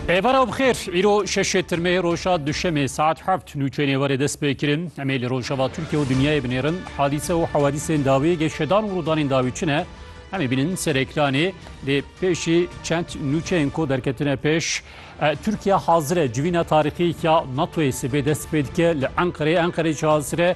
Êvara bixêr îro şeşê tirmeyê roja duşemê saet heft nûçeyê nêverê dest pê kirin em ê li rojava Tirkiye û dinyayê binêrin hadîse û hewadîsên dawî geşedan û rûdanên dawî çi ne em ê bînin ser ekranê lê pêşî çend nûçeyên ku derketine pêş Tirkiye hazir e civîna tarîxî ya NATOyê sibê dest pê dike li Enqerê Enqerê jî hazir e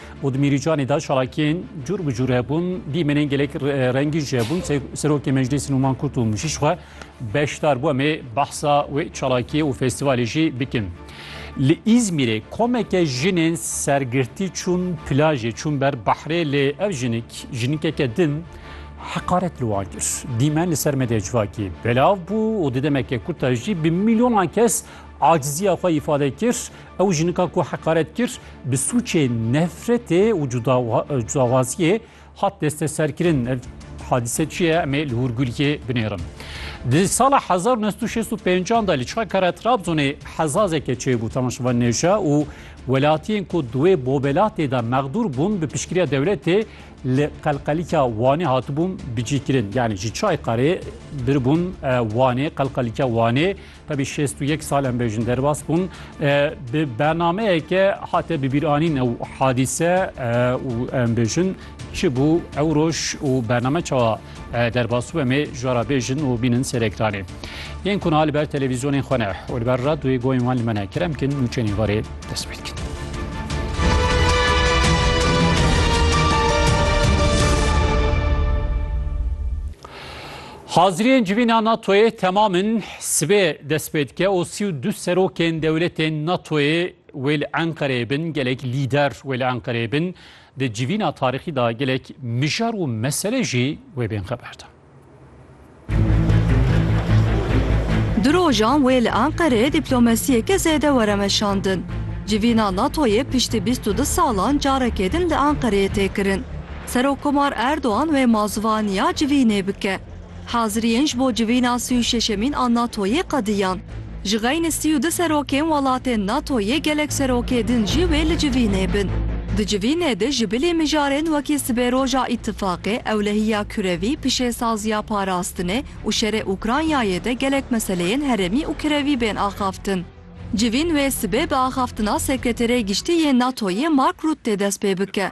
û di mîrîcanê de çalakiyên cûr bi cûr hebûn, dîmenên gelek rengîn jî hebûn. Serokê Meclîsê Nûman Kurt û Mûşîş xwe beşdar bû em ê behsa wê çalakiyê û festîvalê jî bikin. Li Îzmîrê komeke jinên sergirtî çûn plajê, çûn ber behrê lê ev jinik jinikeke din heqaret li wan kir. Dîmen li ser medyaya civakî belav bû û di demeke kurta jî bi mîlyonan kes aciziya xwe îfade kir. Ew jinika ku heqaret kir bi sûçê nefretê û cudawaziyê hat desteserkirin. Ev hadîse çi ye emê li hûrguliyê binêrin. Di sala 1965 da li çakera Trabzonê hezazeke çêbû temaşevan nêja û welatiyên ku duwê bobelatê de mexdûr bûn bi pişkiriya dewletê li qelqelîka Wanê hatibûn bicîkirin. Yani ji çay qarê biribûn Wanê qelqelîka Wanê Tevî şêst û yek sal em bêjin derbas bûn bi bernameyeke hate bibîranîn ew hadîse û em bêjin çi bû ew roj û bername çawa derbas û em ê jara bêjin û bînin serekranê. Yên ku na li ber televîzyonên xwe ne û li ber radyoyê goyên wan li me ne kerem kin nûçenî varê dest pê dikin. Haziriyên civîna NATO'yê temam in, sibê dest pê dike û sî û du serokên dewletên NATO'yê wê li Enqereyê bin, gelek lîder wê li Enqereyê bin, di civîna tarîxî de gelek mijar û mesele jî wê bên xeber de. Du rojan wê li Enqereyê dîplomasiyeke zêde were meşandin. Civîna NATO'yê piştî bîst û du salan carekê din li Enqereyê tê kirin. Serokkomar Erdogan wê ma zivaniya civînê bike. Haziriyên ji bo civîna sî û şeşemîn a NATO'yê qediyan. Ji xeynî sî û du serokên welatên NATO'yê gelek serokê din jî wê li civînê bin. Di civînê de ji bilî mijarên wekî sibêroja îtîfaqê, ewlehiya kurevî, pişêsaziya parastinê û şerê Ukraynayê de gelek meseleyên herêmî û kirevî bên axaftin. Civîn wê sibê bi axaftina Sekreterê Giştî yê NATO'yê Mark Rutte dest pê bike.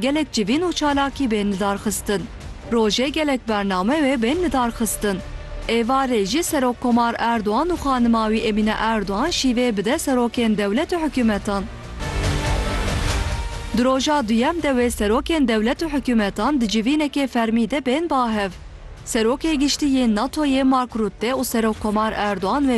Gelek civîn û çalakî bên lidarxistin. Rojê gelek bername wê bên lidarxistin. Êvarê jî Serokkomar Erdogan û xanima wî Emîne Erdogan şîvê bide serokên dewlet û hikûmetan. Di roja duyem de wê serokên dewlet û hikûmetan di civînekê fermî de bên bahev. Serokê Giştî yê NATO'yê Mark Rutte û Serokkomar Erdogan